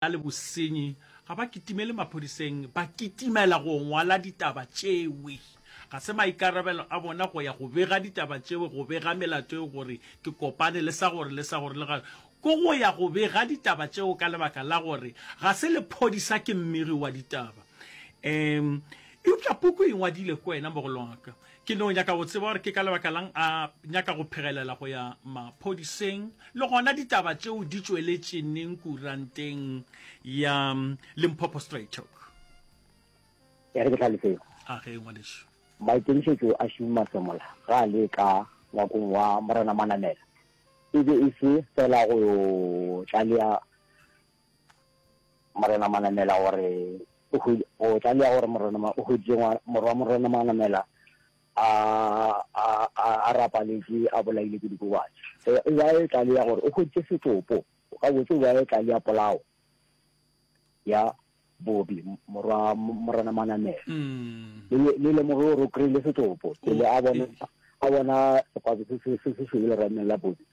na le bosenyi ga ba kitimele maphodiseng ba kitimela go ngwala ditaba tšewe ga se maikarabelo a bona go ya go bega ditaba tšewe go bega melato eo gore ke kopane le sa gore le sa gore le ga ko go ya go bega ditaba tšeo ka lebaka la gore ga se lephodisa ke mmiri wa ditaba um eupša puku e ngwadile ko wena mogolwaka Ke no nyaka go tseba gore ke ka lebaka la'ng a nyaka go phegelela go ya maphodiseng, le gona ditaba tšeo di tšweletše neng kuranteng ya Limpopo Straitalk? E re ke hlaloseng. A ge, ngwanešu. Maikemišetšo a Shumi Masemola ge a le ka ngwakong wa Morena Manamela e be e se fela go yo tlalea Morena Manamela o re, O hwi, o tla lea gore Morena Ma, o hweditše ngwa, morwa Morena Manamela a, a, a, a rapaletše, a bolailwe ke dikobatši. E, e be a e tla lea gore o hweditše setopo, gabotse o be a e tla lea polao ya Bobi, morwa Morena Manamela. Le, le, le lemoge gore o kry-ile setopo, pele a bona, a bona sekwabo se, se, se, se šweu lerameng la Bobi,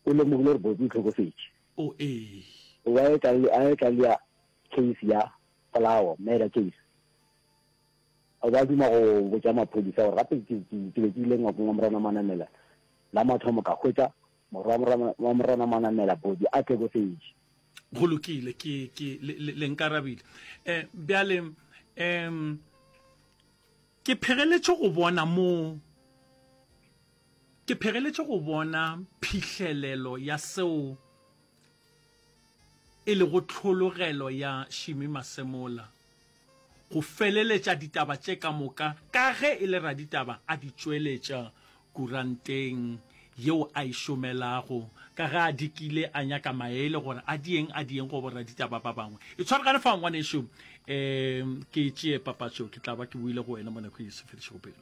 o lemogile gore Bobi o hlokofetše. O ee. Ewa e ka le, a e ka le ya case ya polawo, murder case. O ba duma go botša maphodisa gore gape ke, ke, ke be ke ile ngwakong wa Morana Manamela la mathomo ka hwetša morwa wa Morana, wa Morana Manamela body a tlekofetše. Go lokile, ke, ke, le, le, le nkarabile. Eh, bjale, em, ke phegeletše go bona moo. Ke phegeletše go bona phihlelelo ya seo e lego tlhologelo ya Shimi Masemola, go feleletša ditaba tše ka moka ka ge e le raditaba a di tšweletša kuranteng yeo a e šomelago, ka ge a dikile a nyaka maele gore a dieng a dieng go boraditaba ba bangwe. E tshwaragane fao ngwanešu, um ke tšee papatšo ke tla ba ke boile go wena mo nako e se fedišego pelo.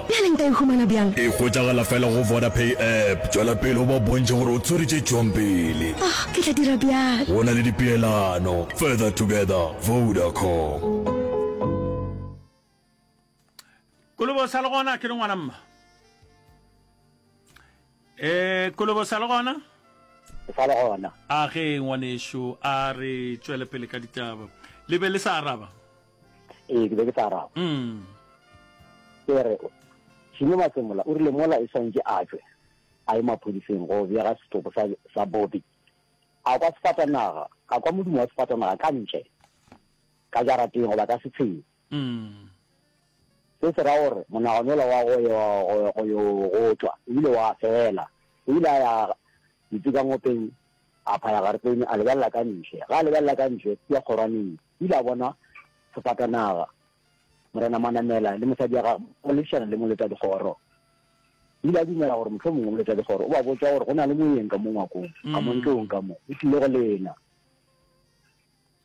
Bjale nka e humana bjang? E hwetšagala fela go Vodapay app. Tšwela pele o ba bontšhe gore o tswere tše tšwang pele. Oh, ke tla dira bjalo. Go na le dipeelano. Further together, Vodacom. Kolobo sa le gona ke re ngwana mma eh kolobo sa le gona sa le gona a ge ngwanešu a re tšwele pele ka ditaba le be le sa araba ee ke be ke tla araba mm. ke re šimo matsemola o rile mola e swantše a tswe a ye maphodiseng go bjega setopo sa, sa bobi a kwa sefatanaga a kwa modumo wa sefatanaga ka ntle ka jarateng goba ka setsheng mm. se se ra gore monaganola wa go yo go tswa ebile wa fela ebile a ya ditsekangopeng a phaya garetone a lebelela ka ntle ga a lebelela ka ntle ya kgorwaneng O ile a bona sefatanaga, Morena Manamela le mosadi wa gagwe ba lebišana le moletadikgoro. O ile a dumela gore mohlomongwe moletadikgoro o ba botša gore go na le moyeng ka mo ngwakong, ka mo ntlong ka mo, o tlile go lena.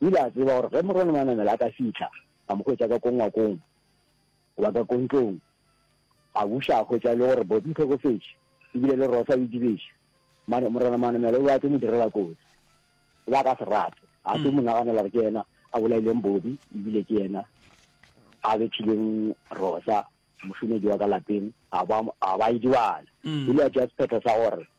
O ile a tseba gore ge Morena Manamela a ka fitlha, a mo hwetša ka ko ngwakong, Go ba ka kontlong, a buša a hwetša e le gore Bobby o hlokofetše e bile le Rosa o idibeše. Mane, Morena Manamela o be a tlo mo direla kotsi. O be a ka se rate. A tlo mo naganela gore ke yena a bolaileng Bobby e bile ke yena a bethileng Rosa, mošomedi wa ka lapeng, a ba, a ba idibala. E le a tšea sephetho sa gore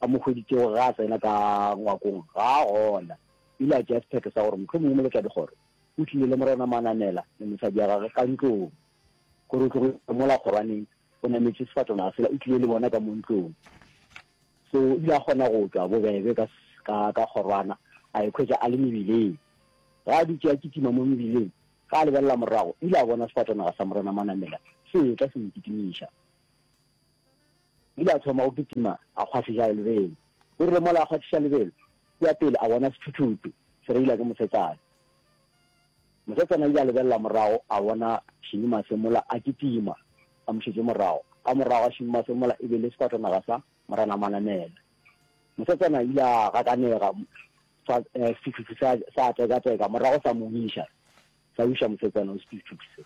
a mo hweditšego ge a tsena ka ngwakong ga a gona, o ile a tšea sephetho sa gore mohlomongwe moletladikgoro o tlile le Morena Manamela le mosadi ya gagwe ka ntlong gore o tlogo itwa mola kgorwaneng, o nametše sefatanaga sela o tlile le bona ka mo ntlong. So o ile a kgona go tšwa bobebe ka, ka, ka kgorwana, a ikhwetša a le mebileng. Ge a dutše a kitima mo mebileng, ge a lebelela morago, o ile a bona sefatanaga sa Morena Manamela se etla se mo kitimiša. O ile a thoma go kitima a kgwahliša lebelo. O rile mola a kgwathiša lebelo, kua pele a bona sethuthutu se reila ke mosetsana. Mosetsana o ile a lebelela morago a bona Šinimase mola a kitima a mo šetše morago. Ka morago ga Šinimase mola e be e le sefatanaga sa Morena Manamela. Mosetsana o ile a gakanega fa sethuthutu sa tekateka morago sa mo wiša, sa wiša mosetsana o sethuthutu se.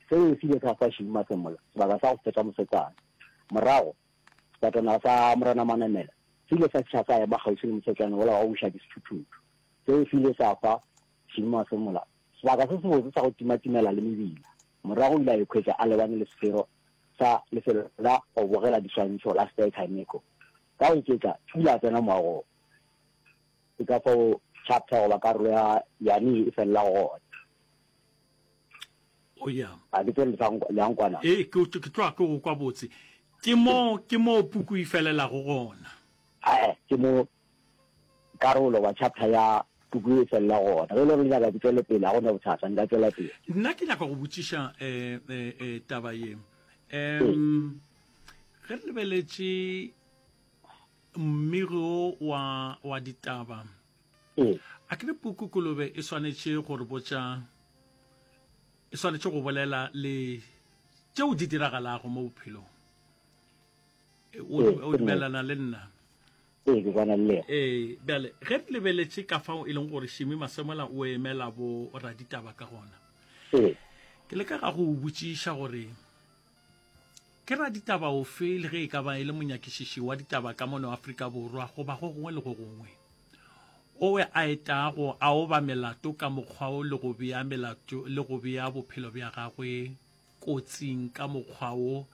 Seo se ile sa fa Shwi Masemola sebaka sa go feta mosetsana. Morago, sefatanaga sa Morena Manamela se ile sa tšha sa ema kgauswi le mosetsana wola wa go buša disuthuthuthu. Seo se ile sa fa Shwi Masemola sebaka se sebotse sa go timatimela le mebila. Morago o ile a ikhwetša a lebane le sefero sa lefelo la go bogela diswantšho la Spyker Nico. Ka go iketla, o ile a tsena moagong. Ke ka fao chapter goba karolo ya Yane ye e felelago gona. o ya a ke tsere leankwana e ke ke tloa ke go kwa botse ke mo ke mo puku e felelago gona a e ke mo karolo wa chapter ya puku e felela gona ge e le gore nyaka ke tswele pele a gona bothata nka tswela pele nna ke nyaka go botšiša eh, eh, eh, taba ye um ge re lebeletše mmiro wa wa ditaba E. A ke re puku kolobe e swanetše go re botša e swanetše go bolela le tšeo di diragalago mo bophelong o dumelana le nna ee ke kwana le ee bjale ge re lebeletše ka fao e leng gore šimi masemola o emela bo raditaba ka gona ke le ka ga go botšiša gore Ke raditaba ofe le ge e ka ba e le monyakišiši wa ditaba ka mono Afrika Borwa goba go gongwe le go gongwe, o we a etago a oba melato ka mokgwa wo le go bea melato le go bea bophelo bja gagwe kotsing ka mokgwa wo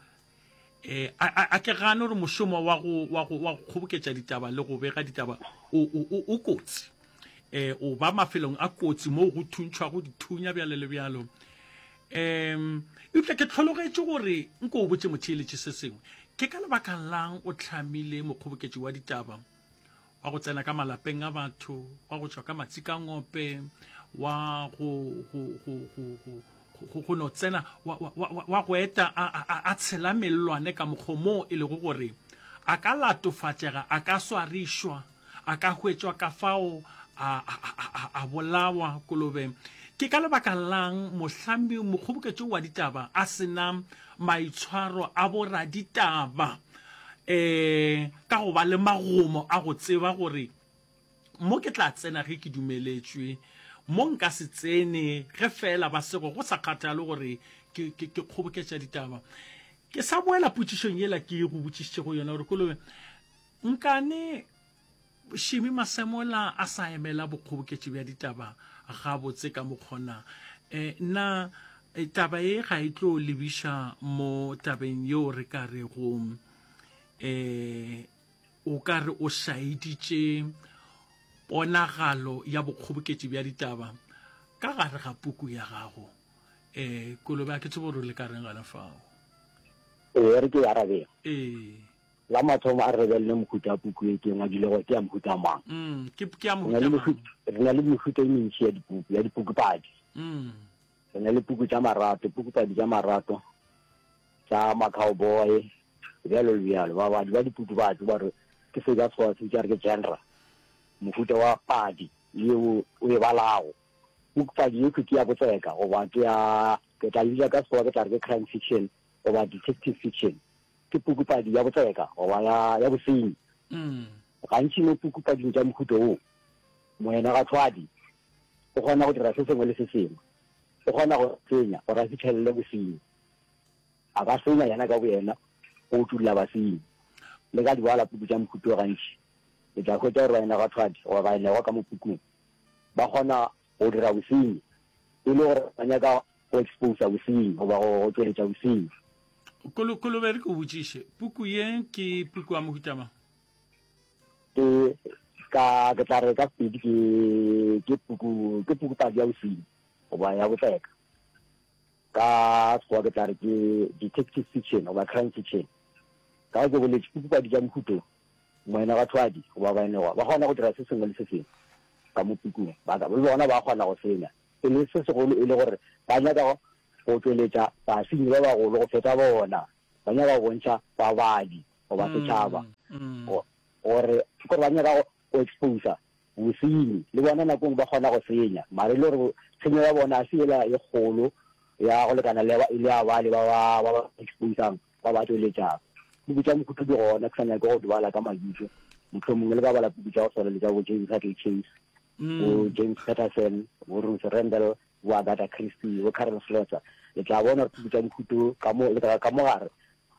e, a, a, a ke gane gore mošomo wa go, wa go, wa go kgoboketša ditaba le go bega ditaba o, o, o, o kotsi e, o ba mafelong a kotsi moo go thuntšhwago dithunya bjalo le bjalo Um eupša ke hlologetše gore nko o botše motheeletše se sengwe ke ka lebaka lang o tlhamile mokgoboketši wa ditaba wa go tsena ka malapeng a batho wa go tšwa ka matsi ka ngope wa go go go go go go go no tsena wa wa wa wa go eta a a- a- a tshela mellwane ka mokgomo e lego gore a ka latofatšega a ka swarišwa a ka hwetšwa ka fao a, a, a, a, a bolawa kolobe ke ka lebaka lang mohlambi mokgoboketšo wa ditaba a sena maitshwaro a boraditaba um ka go ba le magomo a go tseba gore mo ke tla tsena ge ke dumeletšwe mo nka se tsene ge fela ba sego go sa kgathale gore ke, ke, ke kgoboketša ditaba ke sa boela potšišong yela ke go botšišitšego yona gore kolobe Nkane Shimi Masemola a sa emela bokgoboketši bja ditaba gabotse ka mokgona, e, na taba ye ga e tlo lebiša mo tabeng yeo re ka rego e, o ka re o šaeditše ponagalo ya bokgoboketši bja ditaba ka gare ga puku ya gago? E, Kolobe, a ke tsebe gore o le ka reng gona fao. Ee, re tlo e arabela. Ee. La mathomo a re lebelele mohuta wa puku e ke eng, a dule gore ke ya mohuta mang. Mm, ke puku ya mohuta mang. Re na le mehuta e mentši ya dipuku, ya dipukupadi. Mm. Re na le puku tša marato, pukupadi tša marato, tša macowboy, bjalo le bjalo. Babadi ba dipuku ba tse ba re ke se ka sekgowa se bitša re ke genre, mohuta wa padi yeo o e balago. Pukupadi ye ke ya botseka goba ke ya ke tla e bitša ka sekgowa ke tla re ke crime fiction goba detective fiction. ke pukupadi ya botseka goba ya, ya bosenyi. Gantši mo pukupading tša mohuto wo, moenagathwadi o kgona go dira se sengwe le se sengwe. O kgona go senya gore a fihlelele bosenyi. A ka senya yena ka boyena go utulla basenyi. Le ka dibala puku tša mohuto gantši le tla hwetša gore baenagathwadi goba baenegwa ka mo pukung ba kgona go dira bosenyi e le gore ba nyaka go exposa bosenyi goba go tšweletša bosenyi. Kolo, kolo be re ke o botšiše, puku ye ke puku ya mohuta mang? Ke, ka, ke tla re ka Sepedi ke, ke puku, ke pukupadi ya bosenyi goba ya botleka. Ka Sekgowa ke tla re ke detective fiction goba crime fiction. Ka go ke boletše, pukupadi tša mohuto, moenabathwadi goba baenegwa ba kgona go dira se sengwe le se sengwe ka mo pukung, ba ka, le bona ba kgona go senya. e le se segolo e le gore ba nyaka go tšweletša basenyi ba bagolo go feta bona, ba nyaka go bontšha babadi goba setšhaba gore gore ba nyaka go exposa bosenyi le bona nakong ba kgona go senya mare e le gore tshenyo ya bona a se ela e kgolo ya go lekana le e le ya bale ba ba ba ba exposang ba ba tšweletšang puku tša mokhuto di gona ke sa nyake go dibala ka mabitso motlho mongwe le ka bala puku tša go swana le tša bo james hatley chase bo James Patterson, bo Ruth Rendell, bo Agatha Christie, bo Karen Slaughter, le tla bona gore puku tša mohuto ka mo le ka mo gare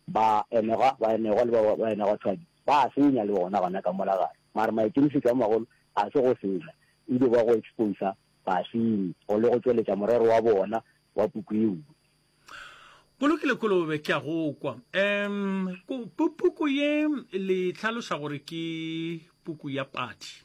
ba enegwa ba enegwa le ba ba enegwa tshwadi ba a senya le bona gona ka mola gare mara maikemisetso a magolo a se go senya ebe ba go exposa basenyi go le go tšweletša morero wa bona wa puku eo Go lokile kolobe ke a go kwa um puku ye le tlhaloša gore ke puku ya padi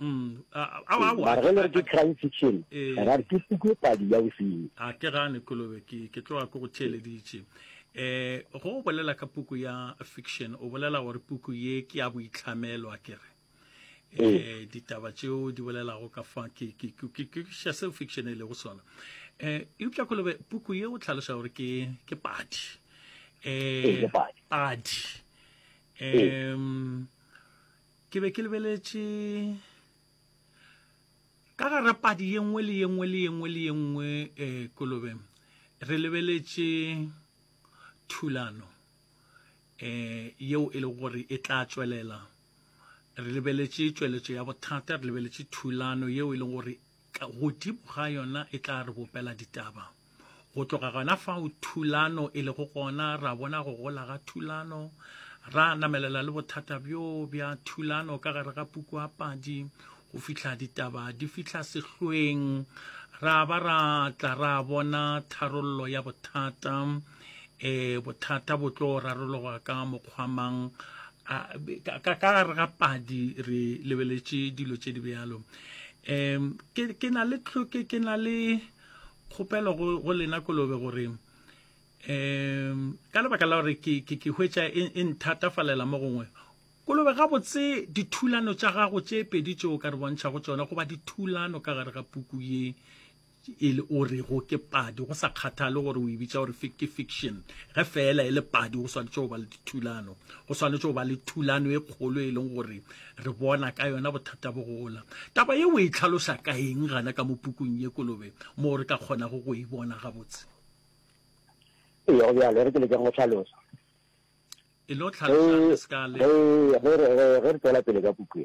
Mm, mara ge le re ke crime fiction ra re ke pukwe padi ya bosenyi a ke gane kolobe ke ke tloga ke go theeleditše eh go o bolela ka puku ya fiction o bolela gore puku ye ke ya boitlhamelo a ke re eh ditaba tšeo di bolelago ka fa ke ke ke ke xa seo fiction e lego sona eh eupša kolobe puku ye o tlhalosa gore ke ke padi eh padi eh Ke be ke lebeletše ka gara padi ye nngwe le ye nngwe le ye nngwe le ye nngwe eh, kolobe re lebeletše thulano eh, yeo e le gore e tla tšwelela re lebeletše tšweletšo ya bothata re lebeletše thulano yeo e leng gore Ka godimo ga yona e tla re bopela ditaba. Go tloga gona fao thulano e lego gona, ra bona go gola ga thulano, ra namelela le bothata bjo bja thulano ka gare ga puku ya padi, go fihla ditaba di fihla sehlweng, ra ba ra tla ra bona tharollo ya bothata. e bothata bo tlo rarologa ka mokgwamang ka gare ga padi re lebeletše dilo tše di bjalo um ke na le tlhoke ke na le kgopelo go lena kolobe gore um ka lebaka la gore ke hwetša e, e nthatafalela mo gongwe kolobe gabotse dithulano tša gago tše pedi tšeo ka re bontšha go tsona goba dithulano ka gare ga puku ye e le o rego ke padi go sa kgathale gore o e bitsa gore ke fiction ge fela e le padi go swanetše go ba le dithulano go swanetše go ba le thulano e kgolo e leng gore re bona ka yona bothata bo gola taba ye o e tlhalosa ka eng gana ka mo pukung ye kolobe moo re ka kgonago go e bona gabotse ee go bjalo e re ke lekeng go tlhalosa e le o tlhalosa re se ka le re re re re tswela pele ka puku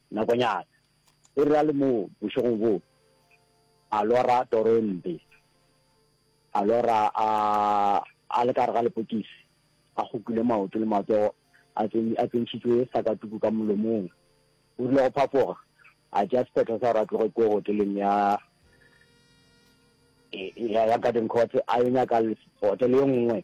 Nakonyana e re a le moo bošegong boo, a lora toro e mpe. A lora a, a le ka gare ga lepokisi, a kgokile maoto le matsogo, a tsen, a tsentšhitšwe sakatuku ka molomong. O rile go phafoga, a tšea sephetho sa gore a tloge kua hoteleng ya, ya, ya Garden Courts, a yo nyaka hotele e nngwe.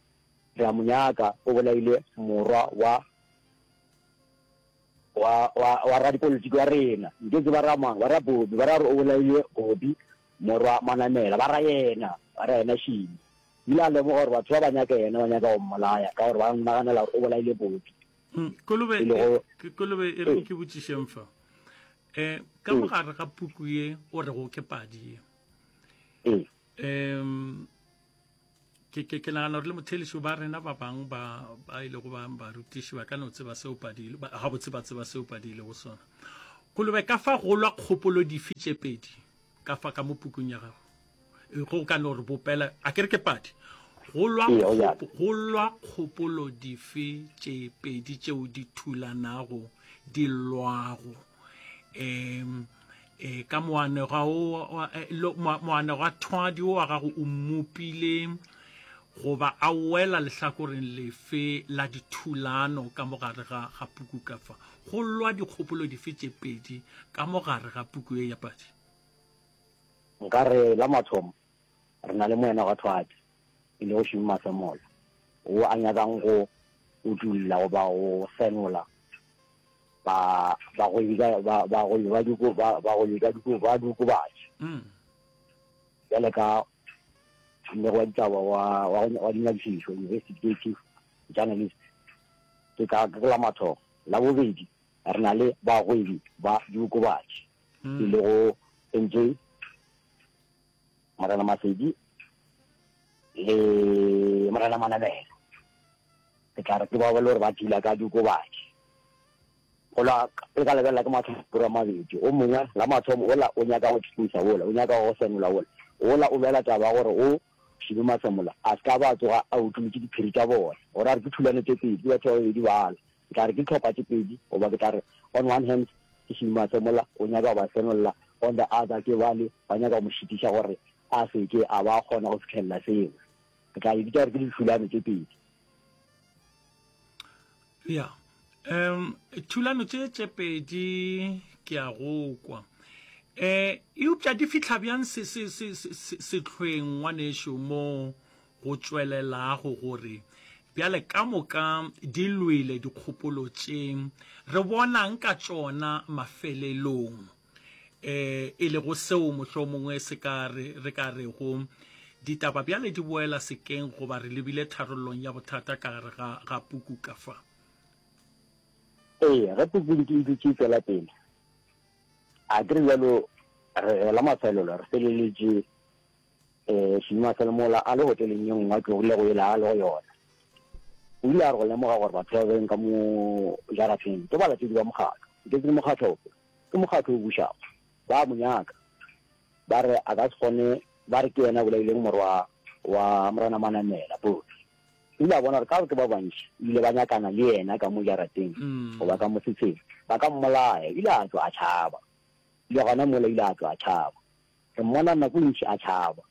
Re a mo nyaka, o bolaile morwa wa, wa, wa, wa radipolitiki wa rena. Nke tseba ra mang, ba ra Bobi, ba ra gore o bolaile Bobi, morwa Manamela, ba ra yena, ba ra yena Shini. O ile a lemoga gore batho ba ba nyaka yena, ba nyaka go mmolaya, ka gore ba naganela gore o bolaile Bobi. Hm, Kolobe, ke, Kolobe e reng ke botšišeng fa. Eh, ka mogare ga puku ye o rego ke padi ye. Eh. um ke ke ke nagana gore le mothelišo ba rena ba bangwe ba ba ile go ba barutiši ba ka no tseba seo padile ga botse ba tseba seo padile go sona kolobe ka fa golwa kgopolo dife tše pedi ka fa ka mo pukung ya gago e, go ka no re bopela a ke re ke padi golwa golwa kgopolo dife tše pedi tšeo di thulanago di lwago um e ka moanega o e, moanega thwadi o wa gago o mmopile goba a wela lehlakoreng lefe la dithulano ka mogare ga ga puku ka fa go lwa dikgopolo dife tše pedi ka mogare ga puku ye ya padi nkare la mathomo re na le moanega thwadi e lego šeuma sa moya, wo a nyakang go utolla goba go senola ba, bagwebi ka, ba, bagwebi ba diko, ba, bagwebi ka diko, ba diokobatši. Mm. Bjale ka mmego wa ditaba wa, wa, wa dinyakišišo, investigative journalist, ke ka ke la mathomo. La bobedi, re na le bagwebi ba diokobatši, mm. e lego entše Morena Masedi le Morena Manamela, ke tla re ke bao ba le gore ba dula ka diokobatši. Gola le ka lebelela ke mahlakore a mabedi, o mongwe la mathomo ola o nyaka go tšhikisa ola, o nyaka go senola ola, ola o lwela taba ya gore o šibe masemola a se ka ba tsoga a utlolotše diphiri tša bona. Gore a re ke thulano tše pedi, ke batho ba babedi bala, Ke tla re ke dihlopha tše pedi, goba ke tla re, on one hand, ke Shima se mola, o nyaka go ba senolla, on the other, ke bale ba nyaka go mo šitiša gore a se ke a ba a kgona go fihlella seo. Ke tla di bitša gore ke dithulano tše pedi. Ya, um, thulano tše tše pedi ke a go kwa. Eh, eupša di fihla bjang sehlweng ngwanešo mo go tšwelelago gore bjale ka moka di lwele dikgopolo tše re bonang ka tšona mafelelong, um e lego seo mohlomongwe se ka re re ka rego ditaba bjale di boela sekeng goba re lebile tharollong ya bothata ka gare ga ga puku ka fa. Ee, ge puku e dutše e tšwela pele, a ke re bjalo re gela mafelelo re feleletše Ee, Shima fela mola a le hoteleng ye nngwe a tlogile go yela a le go yona. O ile a re go lemoga gore batho ba beng ka mo jarateng ke balatedi ba mokgatlo. Nke ke le mokgatlo ofe? Ke mokgatlo o bušago. Ba a mo nyaka. Ba re a ka se kgone, ba re ke yena a bolaileng morwa wa Morena Manamela, Pope. O ile a bona gore ka gore ke ba bantši o ile ba nyakana le yena ka mo jarateng goba ka mosetsheng, ba ka mmolaya. O ile a tšwa a tšhaba. Bile gona mola o ile a tšwa a tšhaba. Ke mmona nako e ntši a tšhaba.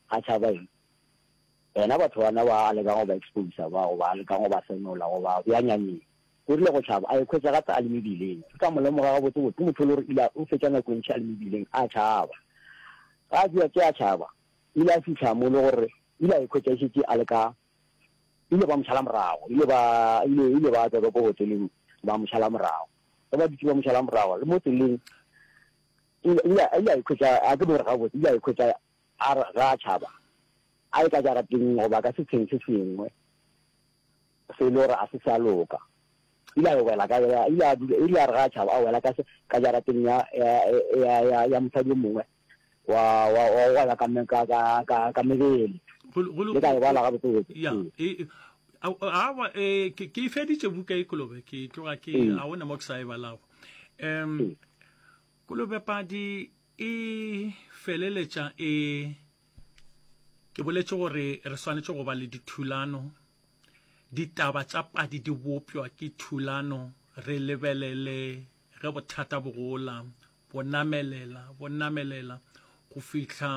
A tšhaba eng? Bena batho bana ba a lekang go ba exposer ba, goba a lekang go ba senola, goba bja nyanyeng. O rile go tšhaba, a ikhwetša gape a le mebileng. Ke ka mo lemoga gabotsebotse, ke motho e le gore o ile o fetša nako e ntši a le mebileng a tšhaba. Ge a tšea tše a tšhaba, o ile a fihla mo e le gore o ile a ikhwetša e šetše a le ka, ba ile ba mo šala morago, ile ba, ile, ile ba tswa ka ko hoteleng ba mo šala morago. Ge ba dutše ba mo šala morago, le mo tseleng, O ile a ikhwetša a ke bogore gabotse, o ile a ikhwetša a re ga a tšhaba a ye ka jarateng goba ka setsheng se sengwe se e le gore a se sa loka. O ile a yo wela ka, o ile a dula, o ile a re ga a tšhaba a wela ka jarateng ya mosadi yo mongwe wa go gweba ka mebele. Le ka e bala gabotsebotse. Aowa, ke e feditše buka e, Kolobe, ke tloga ke, ga go na mo ke sa e balago. um hmm. kolobepadi e feleletša e ke boletše gore re swanetše go ba le dithulano ditaba tša padi di bopjwa ke thulano re lebelele ge bothata bogola bonamelela bonamelela go fihla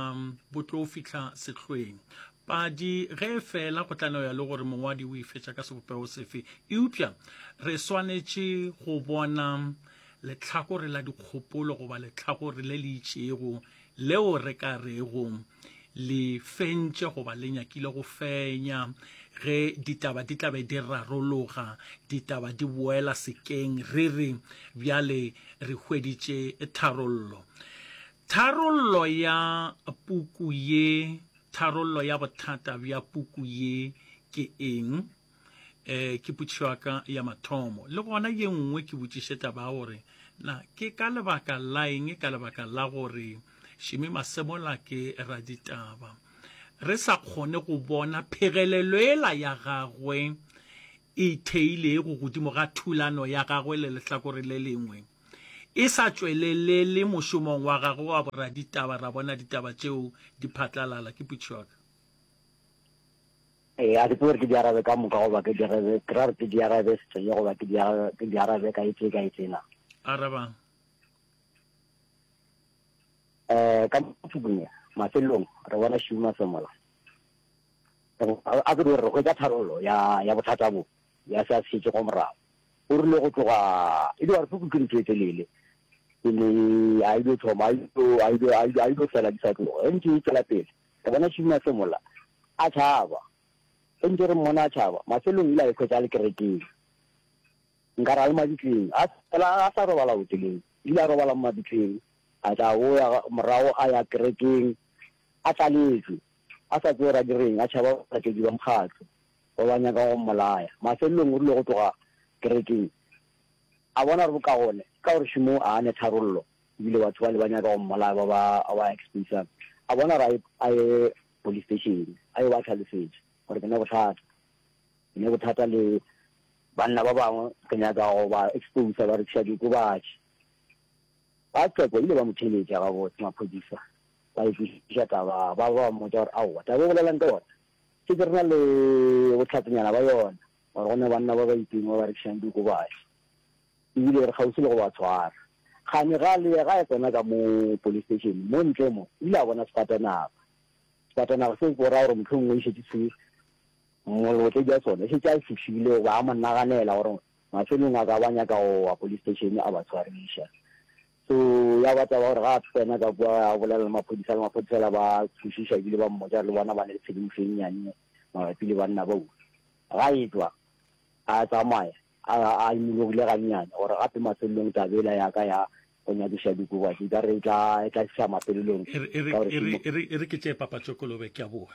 bo tlo fihla sehlweng. Padi ge e fela go tla no ya le gore mongwadi o e fetša ka sebopego sefe, eupša re swanetše go bona lehlakore la dikgopolo goba lehlakore le le itšego leo re ka rego le fentše goba le nyakile go fenya ge ditaba di tlabe di rarologa ditaba di boela sekeng re re bjale re hweditše tharollo Tharollo ya puku ye Tharollo ya bothata bja puku ye ke eng? E, ke potšišo ya ka ya mathomo. Le gona ye nngwe ke botšiše taba ya gore na ke ka lebaka la eng ka lebaka la gore Šimi Masemola ke raditaba re sa kgone go bona phegelelo ela ya gagwe e theilego godimo ga thulano ya gagwe le lehlakore le lengwe, e sa tšwelelele mošomong wa gagwe wa boraditaba, ra bona ditaba tšeo di phatlalala. Ke putšo ya ka. Ee, a ke tsebe gore ke di arabe ka moka goba ke di arabe, ke ra gore ke di arabe setsweye goba ke di arabe, ke di arabe ka etse, ka etse na? Arabang. Eh, ka motšubung ya, mafelelong, re bona Shuma Semola. A ke dire, re hwetša tharollo ya, ya bothata bo, ya se a se šetšego morago. O rile go tloga, e dio re puku ke ntho e telele, pele a ilo thoma, a ilo, a ilo, a ilo, a ilo fela di sa tloga. Ge ntše e tšwela pele, re bona Šima se mola, a tšhaba. Ge ntše re mmona a tšhaba, mafelelong o ile a ikhwetša a le kerekeng. Nkare a le mabitleng. A fela a sa robala hoteleng. O ile a robala mo mabitleng, a tla a boya morago a ya kerekeng, A tlaletšwe, a sa tsewe ra direng, a tšhaba balatedi ba mokgatlo ba ba nyaka go mmolaya. Mafelelong o rile go tloga kerekeng, a bona gore bokagone ka gore šomong a ne tharollo, e bile batho bale ba nyaka go mmolaya ba ba ba exposang, a bona gore a ye a ye police station a yo ba hlalosetša gore ke ne bothata, ke ne bothata le banna ba bangwe ke nyaka go ba exposa ba rekiša diokobatši. Ba Tseko ba ile ba mo theeletša gabotse maphodisa, ba e kwešiša taba ba ba ba mmotša gore, Aowa, taba e bolela'ng ka yona? Šetše re na le bohlatsenyana bja yona gore go ne banna ba Baiping ba ba rekišang diokobatši e bile re kgauswi le go ba tshwara. Kgane ga a lea ga a tsena ka mo polisteishene mo ntle mo, o ile a bona sefatanaga. Sefatanaga seo ke go ra gore mohlomongwe e šetše se mmolote bja sona e šetše a e fihlile goba a mo naganela gore Mafelong a ka ba nyaka go wa police station a ba tshwariša. So ya ba taba gore ga a tsena ka kwa a bolela le maphodisa le maphodisa la ba tshošiša ebile ba mmotša le bona ba ne le tshedimošo e nnyane mabapi le banna bao. Ga e tšwa a tsamaya a a imologile gannyane gore gape mafelelong taba ela ya ka ya go nyakiša dikobo e ka re e tla e tla fiša mafelelong ka gore e re ke tše papatšokolobe ke a boa.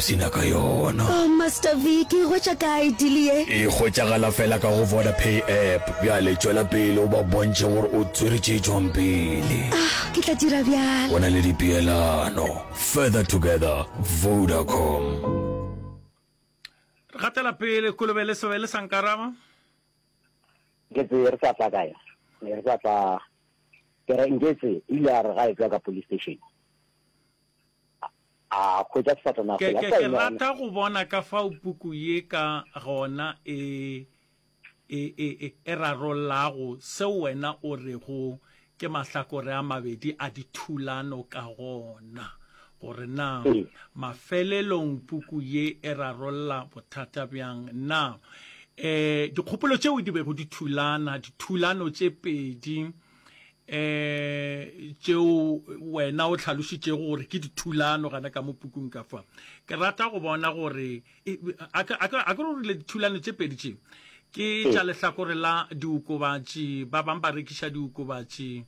Sina ka yona. Oh Master V, ke e hwetša kae deal ye? E hwetšagala fela ka go Vodapay app. Bjale tšwela pele o ba bontšhe gore o tswere tše tšwang pele. Ah, ke tla dira bjalo. Go na le dipeelano. Further together, Vodacom. Re gatela pele, Kolobe le Sebe le sa nkaraba. Nke tse re sa tla kae? Ne re sa tla ke re Nketse o ile a re ga e tšwa ka police station. A hwetša sefatanaga Ke, sela ke, sa ke yena. rata go bona ka fao puku ye ka gona e, e, e, e, e rarollago seo wena o rego ke mahlakore a mabedi a dithulano ka gona, gore na Ee. mafelelong puku ye e rarolla bothata bjang. Na e, dikgopolo tšeo di bego di thulana, dithulano tše pedi, eh tšeo wena o tlhalošitšego gore ke dithulano gana ka mo pukung ka fa ke rata go bona gore e, a ke re rile dithulano tše pedi tše ke ee. tša lehlakore la diokobatši ba bang ba rekiša diokobatši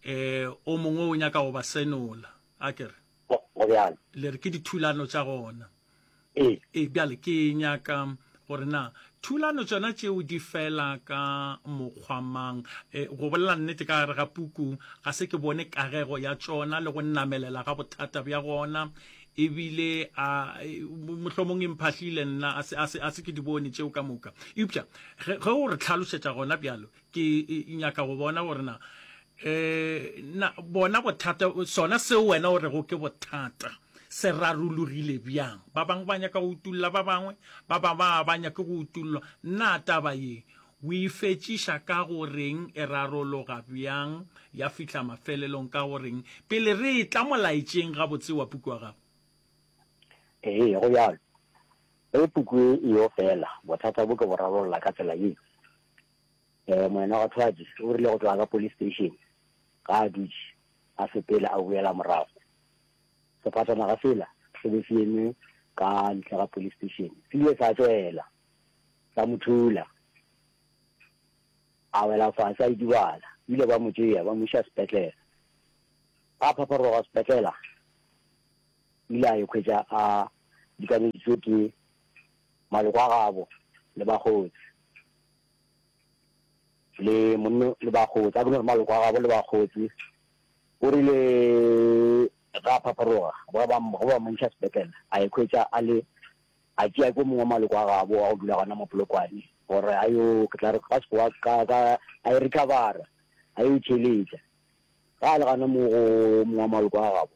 eh o mongwe o nyaka go ba senola a kere Go, go bjalo. Le re ke dithulano tša gona. Ee. Ee, bjale ke nyaka gore na thulano tšona tšeo di fela ka mokgwa mang? E, go bolela nnete, ka gare ga puku ga se ke bone kagego ya tšona le go namelela ga bothata bja gona, e bile a, e, mohlomong e mphahlile nna, a se, a se, a se ke di bone tšeo ka moka. Eupša ge, ge o re hlalošetša gona bjalo, ke nyaka go bona gore na um na bona bothata sona seo wena o rego ke bothata se rarologile bjang ba bangwe ba nyaka go utulla ba bangwe ba ba ba ba nyake go utullwa nna taba ye o e fetšiša ka goreng e rarologa bjang ya fihla mafelelong ka goreng pele re e tla molaetšeng gabotse wa puku wa gago ee go bjalo ge puku e yo fela bothata bo ke bo rarolola ka tsela ye um moena wa thwadi o rile go tloga ka police station ga a dutše a sepela a boela morago sefatanaga sela se be se eme ka ntle ga police station se ile sa tswela sa mo thula a wela fase a idibala ile ba mo tšea ba mo iša sepetlela a phapharoga sepetlela ile a ekhwetša a dikameditswe ke maloko a gabo le bakgotsi le monno le bakgotsi a bone maloko a gabo le bakgotsi o rile ga phapharoga go ba go ba montšha sepetlele a ekhwetša a le a tšea ko mongwe maloko a gabo a go dula gona mo polokwane gore a yo ke tla re ka sekoa ka ka a e recover a yo tšheletša ga le gana mo go mongwe maloko a gabo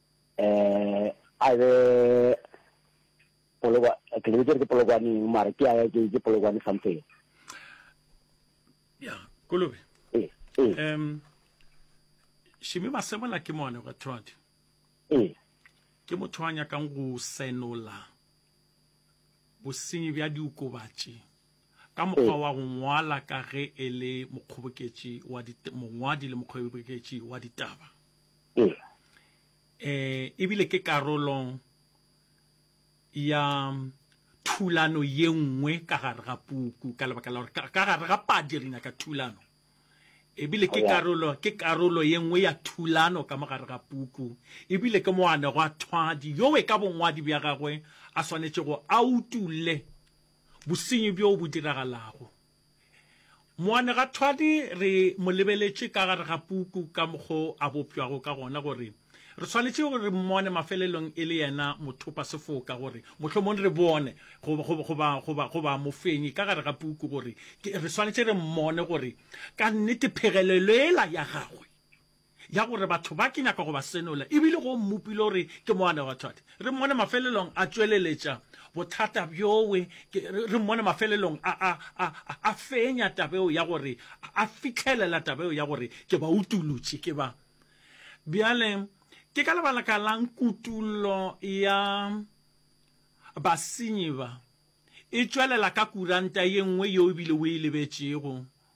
eh a be polokwa ke le ke polokwaneng mara ke ya ke ke polokwane something ya kolobe eh eh em shimi masebola ke mone go thodi eh ke motho a nyakang go senola bosenyi bja diokobatši ka mokgwa wa go ngwala ka ge e le mokgoboketši wa mongwadi le mokgoboketši wa ditaba Ee. Ee, e bile ke karolo ya thulano ye nngwe ka gare ga puku ka lebaka la gore ka gare ga padi re nyaka thulano ebile ke karolo ke karolo ye nngwe ya thulano ka mo gare ga puku ebile ke moane go a thwadi yowe ka bongwadi bja gagwe a swanetše go a utule bosenyi bjo bo diragalago Moanegwathwadi re mo lebeletše ka gare ga puku ka mokgo a bopšwago ka gona gore re swanetše re mmone mafelelong e le yena mothopasefoka gore mohlomong re bone goba mofenyi ka gare ga puku gore re swanetše re mmone gore ka nnete phegelelo yela ya gagwe ya gore batho ba ke nyaka go ba senola e bile go mmopile gore ke moana wa thwadi. Re mmone mafelelong a tšweleletša bothata bjowe, re mmone mafelelong a, a, a, a fenya taba eo ya gore, a fihlelela taba eo ya gore ke ba utolotše, ke ba. Bjale, ke ka lebalaka la'ng kutollo ya basenyi ba e tšwelela ka kuranta ye nngwe yeo e bile o e lebetšego?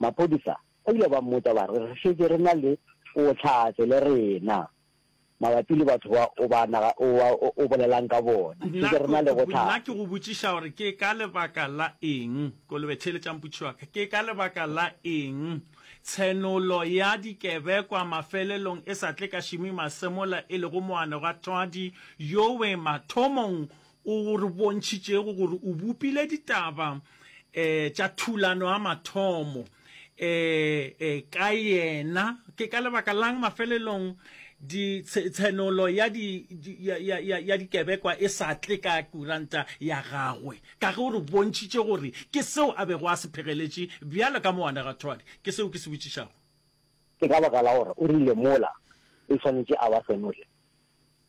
Maphodisa ba ile ba mmotša ba re, Re šetše re na le bohlatse le rena mabapi le batho ba o ba naga, o ba o bolelang ka bona. Re šetše re na le bohlatse. Nna ke go botšiša gore ke ka lebaka la eng kolobe tšhele tša mputši wa ka, ke ka lebaka la eng tshenolo ya dikebekwa mafelelong e sa tle ka Shimi Masemola e lego moanegwathwadi yowe mathomong O re bontšhitšego gore o bopile ditaba um tša thulano ya mathomo um ka yena. Ke ka lebaka la'ng mafelelong di tshenolo ya di ya dikebekwa e sa tle ka kuranta ya gagwe? Ka ge o re bontšhitše gore ke seo a bego a se phegeletše bjalo ka moanegwathwadi. Ke seo ke se botšišago. Ke ka baka la gore o rile mola e swanetše a ba senole.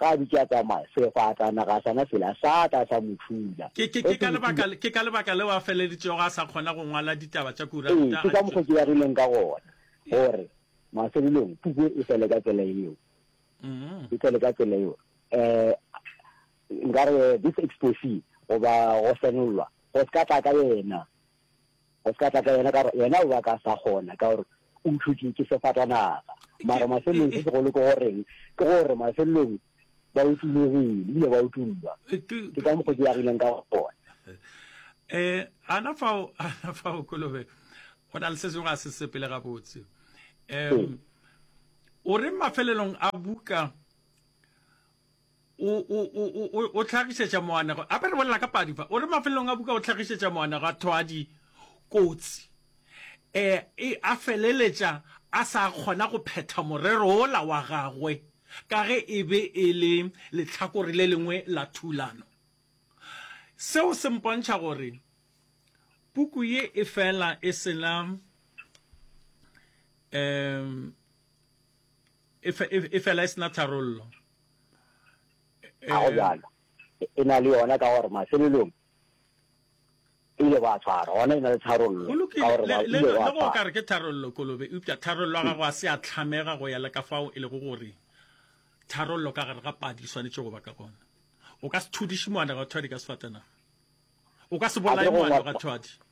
Ge a dutše a tsamaya, sefatanaga sona sela sa tla sa mo thula. Ke, ke, ke ka lebaka, ke ka lebaka leo a feleleditšego a sa kgona go ngwala ditaba tša kuranta. Ee, ke ka mokgo ke begileng ka gona, gore mafelelong puku e fele ka tsela yeo, e fele ka tsela yeo. Nkare this exposé, goba go senollwa, go se ka tla ka yena. O se ka tla ka yena ka gore yena o ba ka sa kgona ka gore o uthotše ke sefatanaga. Mara mafelelong se segolo ke goreng ke gore mafelelong ba utulegile ebile ba utullwa. Ke ka mokgwa ke yagileng ka gona. E, ana fao, ana fao Kolobe. Go na le se sengwe a se sepele gabotse. E, o re mafelelong a buka O, o, o, o, o, o tlhagišetša moanegwa. Gape re bolela ka padi fa. O re mafelelong a buka o tlhagišetša moanegwa thwadi kotsi. E, e, a feleletša a sa kgona go phetha morero wola wa gagwe, ka ge e be e le lehlakore le lengwe la thulano. Seo se mpontšha gore puku ye e fela e se na, um, e fela e se na tharollo. Ga go bjalo, e na le yona, ka gore mafelelong e ile ba tshwara, gona e na le tharollo. Go lokile, le go ka re ke tharollo, Kolobe, eupša tharollo ya gago a se a hlamega go ya le ka fao e lego gore tharollo ka gare ga padi e swanetše go ba ka gona. O ka se thudiše moanegwathwadi ka sefatanaga. O ka se bolaye moanegwathwadi.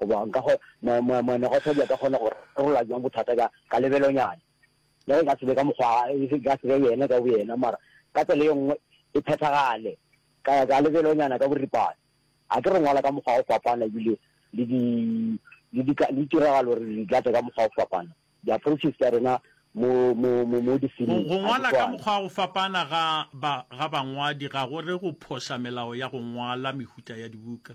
Go bjang ka go, moanegotha o be a ka kgona go rarolla bjang bothata ka, ka lebelonyana? Le ge e ka se be ka mokgwa, e ka se be yena ka boyena, mara ka tsela ye nngwe e phethagale, ka, ka lebelonyana ka boripana. A ke re ngwala ka mokgwa o fapana, ebile le di, le di, le ditiragalo re di tlatše ka mokgwa o fapana. Di-approaches tša rena mo, mo, mo, mo difiling ga di swane. Go ngwala ka mokgwa o fapana ga ba, ga bangwadi ga go re go phoša melao ya go ngwala mehuta ya dibuka.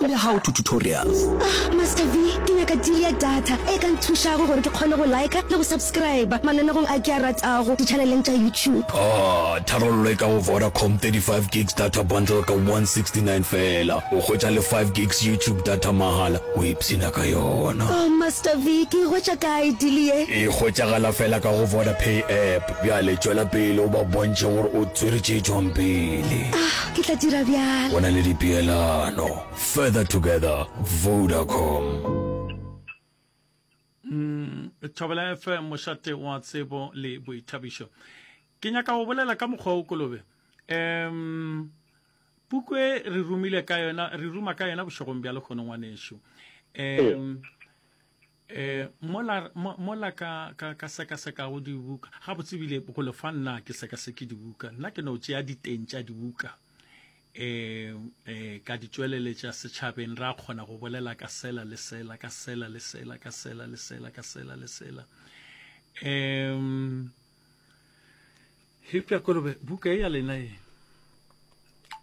le how to tutorials. Ah Master V, ke nyaka deal ya data e ka nthušago gore ke kgone go liker le go subscriber mananegong a ke a ratago di-channeleng tša YouTube. Ah, tharollo e ka go Vodacom, 35 gigs data bundle ka 169 feela, o hwetša le 5 gigs YouTube data mahala, o ipshina ka yona. Oh Master V, ke e hwetša kae deal ye? E hwetšagala feela ka go Vodapay app. Bjale tšwela pele o ba bontšhe gore o tswere tše tšwang pele. Ah, ke tla dira bjalo. Go na le dipeelano. Further together, Vodacom. Mm, thobela fm mošate wa tsebo le boithabišo ke nyaka go bolela ka mokgwa o kolobe um puku e re rumile ka yona re ruma ka yona bošegong bja lekgono ngwanešu um E, mola, mola ka, ka, ka sekasekago dibuka gabotsebile go lefa nna ke sekaseke dibuka nna ke no tšea diteng tša dibuka eh eh ka di tšweleletša setšhabeng ra kgona go bolela ka sela le sela ka sela le sela ka sela le sela ka sela le sela um hipja kolobe buka e ya lena e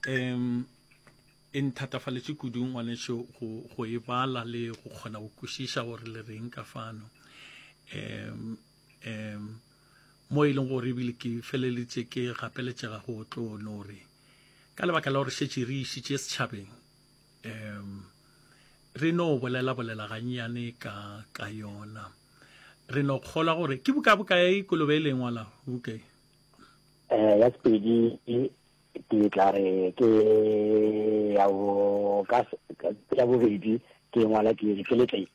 um E nthatafaletše kudu ngwanešu go, go e bala le go kgona go kwešiša gore le reng ka fano. Um, um, mo e leng gore ebile ke feleleditše ke gapeletšega go tlo no re ka lebaka la gore šetše re išitše setšhabeng um re no bolela bolela gannyane ka ka yona re no kgolwa gore ke buka buka e kolobe e lengwa la buka e eh, ya sepedi ke tla re ke ya bo ka ya bobedi ke ngwala ke re ke letle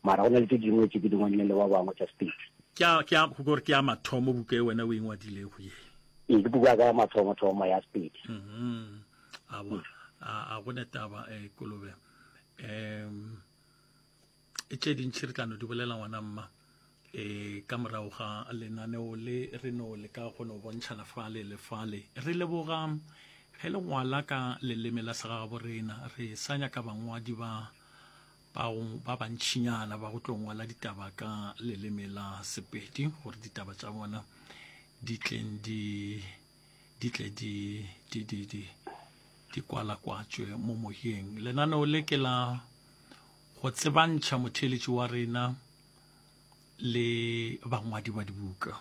mara go na le tse dingwe tse ke dingwe le ba bangwe tsa state ke a ke a go gore ke a mathomo buka e wena o ingwadile go ye e ke buka ka mathomo thomo ya state mhm a bona a go ne taba e eh, kolobe em e tše dintši re tla no di bolela ngwana mma e ka morago ga lenaneo le re no le ka go no bontšhana fale le fale re leboga ge le ngwala ka leleme la segagabo rena re sa nyaka bangwadi ba ba bantšhinyana ba go tlo ngwala ditaba ka leleme la sepedi gore ditaba tša bona di tleng di di tle di di di di di kwalakwatšwe mo moyeng lenaneo le ke la Go tsebantšha motheeletši wa rena le bangwadi ba dibuka,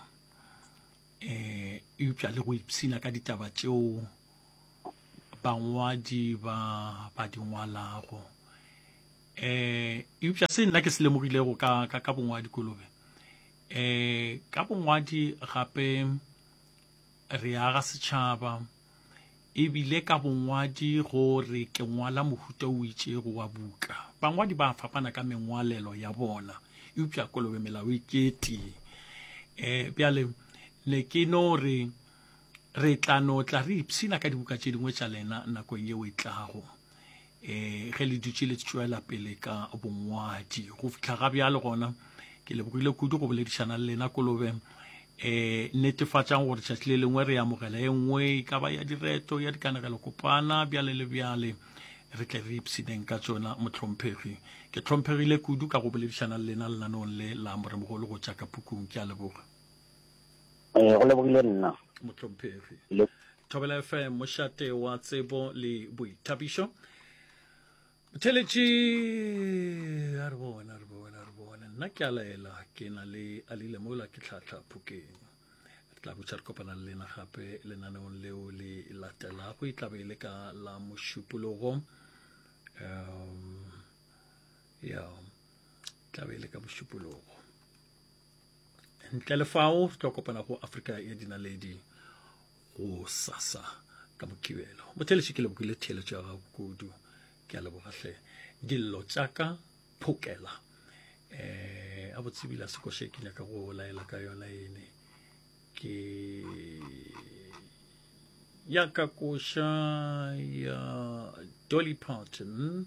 um eupša le go ipshina ka ditaba tšeo bangwadi ba ba di ngwalago. Um eupša se nna ke se lemogilego ka, ka, ka bongwadi kolobe, um ka bongwadi gape re aga setšhaba, E bile ka bongwadi go re ke ngwala mohuta o itšego wa buka. Bangwadi ba fapana ka mengwalelo ya bona, eupša kolobe melao e ke tee. E, bjale ne ke no re re tla no tla re ipshina ka dibuka tše dingwe tša lena nakong yeo e tlago. eh ge le dutše le tšwela pele ka bongwadi go fitlha ga bjale gona ke lebogile kudu go boledišana le lena kolobe eh netefatsang gore tšatši le lengwe re amogela e nngwe e ka ba ya direto ya dikanegelo kopana bjale le bjale re tle re ipshineng ka tsona motlhomphegi ke tlhomphegile kudu ka go boledišana le lena lenanong le la moremogolo go tšaka pukung ke a leboga Ee, go lebogile nna. Mohlomphegi. Le. Thobela FM, mošate wa tsebo le boithabišo. Theletši, a re bone, a re bone, a re bone. Nna ke a laela, ke na le alile mola ke tlhatlha phokeng. Re tla botša re kopana le lena gape lenaneong leo le latelago e tlabe e le ka la mošupologo. Um, ya, tlabe e le ka mošupologo. ntle le fao re tlo kopana go afrika ya dinaledi go sasa ka mokibelo botheletše ke lebokile theeletšo ya gago kudu ke a lebogatlhe dillo tšaka phokela eh a botsebile se koše ke nyaka go laela ka yona ene ke ya ka koša ya dolly parton